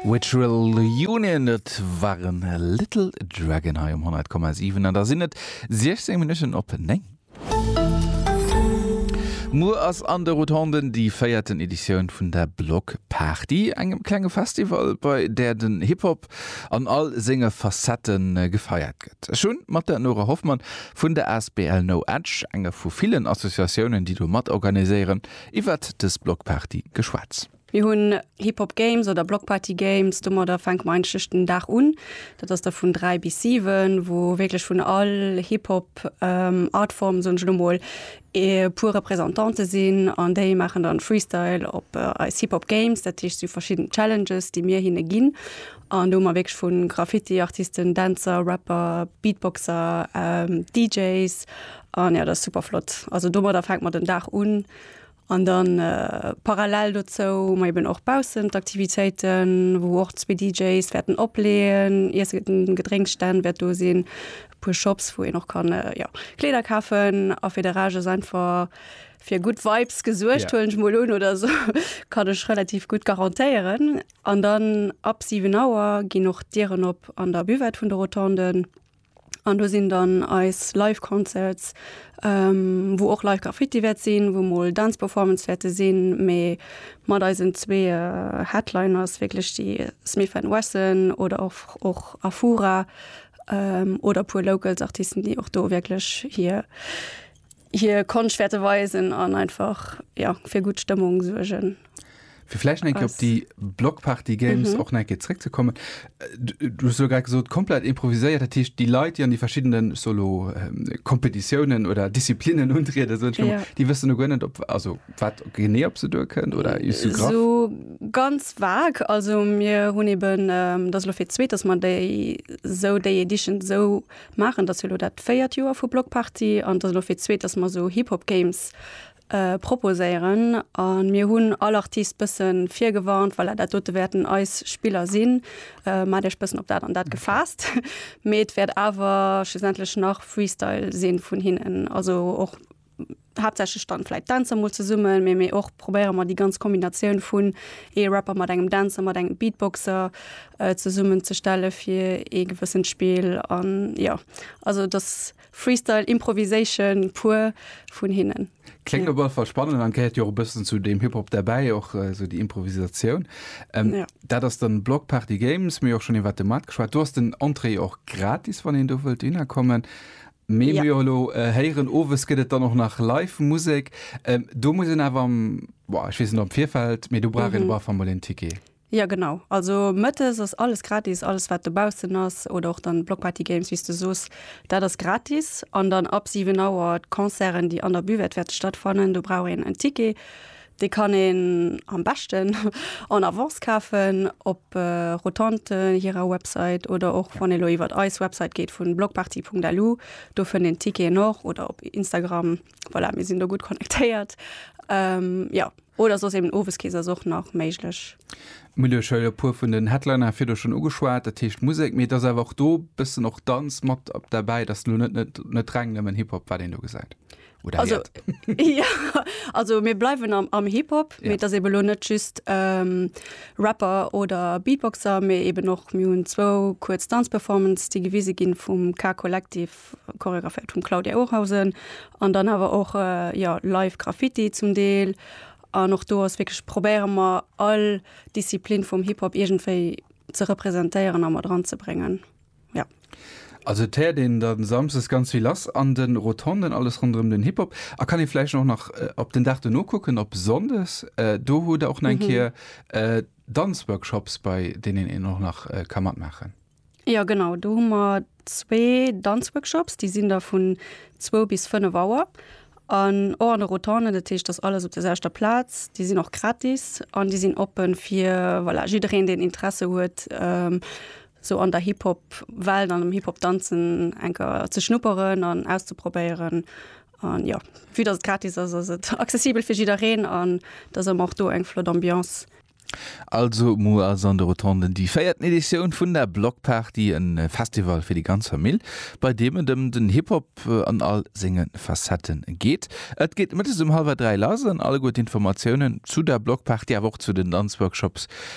Virtual Union, dat waren Little Dragon hei um 100,7 an da sinn et 16 Minutten op 9. Muer ass an de Rotonden déi véierten Editioun vun der Block Party, engem klenge Festival, bei där den Hip Hop an all senge Facette gefeiert gëtt. Ech hunn mat der Nora Hoffmann vun der asbl No Edge, enger vu villen Associatiounen, déi do matorganiséieren, Iwwert des Blockparty geschwatz. Mir hunn Hip Hop Games oder Block Party Games. Domadder fänke mer eigentlech den Dag un. Dat ass da vun 3 bis 7, wou wierklech vun all Hip Hop Artform, soen ech elo mol, e puer Représentantë sinn an déi maachen dann Freestyle op eis Hip Hop Games. Dat heescht, si hu verschidden Challenges, déi mir hinne ginn. An do hu mer wierklech vun Graffiti Artisten, Dänzer, Rapper, Beatboxer, DJs Ah ja, dat ass super flott. Also domadder fänkt mer den Dag un. An dann äh, parallel dozou hu mer eben och baussen d'Aktivitéiten, wou och zwee DJs wäerten opleeën, Iesse gëtt, Gedrénksstänn wäert do sinn, e puer Shops, wou een och kann äh, ja, Kleeder kafen a fir de Rage ass einfach fir gutt Vibes gesuergt, Ja. huelen ech mol un oder so, kann ech relativ gutt garantéieren. An dann ab 7 Auer ginn och d'Dieren op an der Buvette vun de Rotonden. An do sinn dann eis Live Concerts, wou och Live Graffiti wäert sinn, wou mol Dance Performance wäerte sinn, mee mat eisen zwee Headliners wierklech déi Smith and Wesson oder och Afura oder e puer Locals Artisten, déi och do wierklech hir. hier Konscht wäerte weisen an einfach ja, fir gutt Stëmmung suergen. Fir vläicht enke op déi Blockparty Games mhm. och enke zréck ze kommen. Äh, du so grad gesot komplett improviséiert, dat hicht déi Leit, déi an déi verschiedenen Solo ähm, Kompetitiounen oder Disziplinen untriede so, ja. Di wëssen du gënnet op also wat genee op se duer kënnt oder is du grad? So ganz vag, also mir hunn eben ähm, dat lo fir zweet, dass man déi sou déi Edition sou maachen. Et ass jo elo dat véiert Joer vu Bloc Party an et ass elo fir d'zweet, dass mer esou Hip-Hop-Games proposéieren. A mir hunn all Artist e bësse virgewarnt, voilà, dat dote wäerten eis Spiller sinn, maacht Iech e bëssen op dat an dat gefaasst. Mee et wäert awer schlussendlech nach Freestyle si vun hinnen, also och. haaptsächlech dann vläit Dänzer mol zesummen, mee mee och probéiere mer déi ganz Kombinatioun vun ee Rapper mat engem Dänzer, mat engem Beatboxer äh, zesummenzestelle fir ee gewëssent Spill an jo. Also dass Freestyle, Improvisation pur vun hinnen. Klingt op alle Fall spannend an gehäert jo och e bëssen zu deem Hip-Hop derbäi, och äh, esou déi Improvisatioun. Ähm, Ja. Dat ass dann Block Party Games, mir och schon iwwer de Markt geschwat. Du hast den Entrée och gratis, wann een do wëllt hinnerkommen. Mee mir jo elo héieren, owes gëtt et dann och nach live Musek. Do muss een awer, boah, ech weess net am Virfeld, mee do brauch een op alle Fall mol een Ticket. Jo, genau. Also mëttes ass alles gratis, alles wat dobaussen ass oder och dann Blockparty Games, wéi s de soos, dat ass gratis. An dann ab 7 Auer d'Concerten, déi an der Buvette wäerte stattfannen, do brauch een en Ticket. Dee kann een am beschten en avance kafen op Rotonte hirer Website oder och wann ee elo iwwert eis Website geet vun blockparty.lu, do fënnt een d'Ticketen och oder op Instagram, voilà, mir sinn do gutt connectéiert. Jo, oder soss eben Oweskeess ass och nach méiglech. Mir hunn iech e puer vun den Headliner virdu schonn ugeschwat, dat heescht Musek, mee et ass awer och do e bëssen och Danz mat derbäi. Et ass elo net reng nëmmen Hip-Hop, wat een do gesäit. Oder also, ja, also mir bleiwen am, am Hip-Hop, ja. dat ebe lo net just ähm, Rapper oder Beatboxer, mé eben och mir hunn zwou kuerz Danzperformance, déi gewise ginn vum K-Kollektiv choreographiert vum Claudia Ohrhausen an dann hawer och äh, ja, live Graffiti zum Deel. An och do ass wkeg probéiere mer all Disziplin vum Hip-Hop egentéi ze repräsentéieren a mat dran ze brengen. Ja. Also et he'ert én dann Samsdes ganz vill lass an den Rotonden, alles rondrem den Hip-Hop. A kann én vleicht och nach op den Dag dono kucken, op Sondes, do huet der och nach eng Ke'er Danzworkshops bei dénen én och nach ka matmachen? Jo genau, do hun mer zwé Danzworkshops, de' sin da vun zwou bis fennef Auer an och an de Rotonden, dat he'escht dass alles op der sélchter Plaz, de' sin och gratis an de' sin oppen fir voilà jiderén dén Interesse huet sou an der Hip-Hop Welt an am Hip-Hop danzen enker ze schnupperen an auszeprobéieren an jo vue dass et gratis ass ass et accessibel fir jiddereen an dass ëmmer och do eng flott Ambiance. Also muer ass an de Rotonden déi véierten Editioun vun der Blockparty, e Festival fir déi ganz Famill, bei deem et ëm den Hip-Hop an all senge Facette geet. Et geet mëttes um hallwer dräi lass an alleguer d'Informatiounen zu der Blockparty, awer och zu den Danzworkshops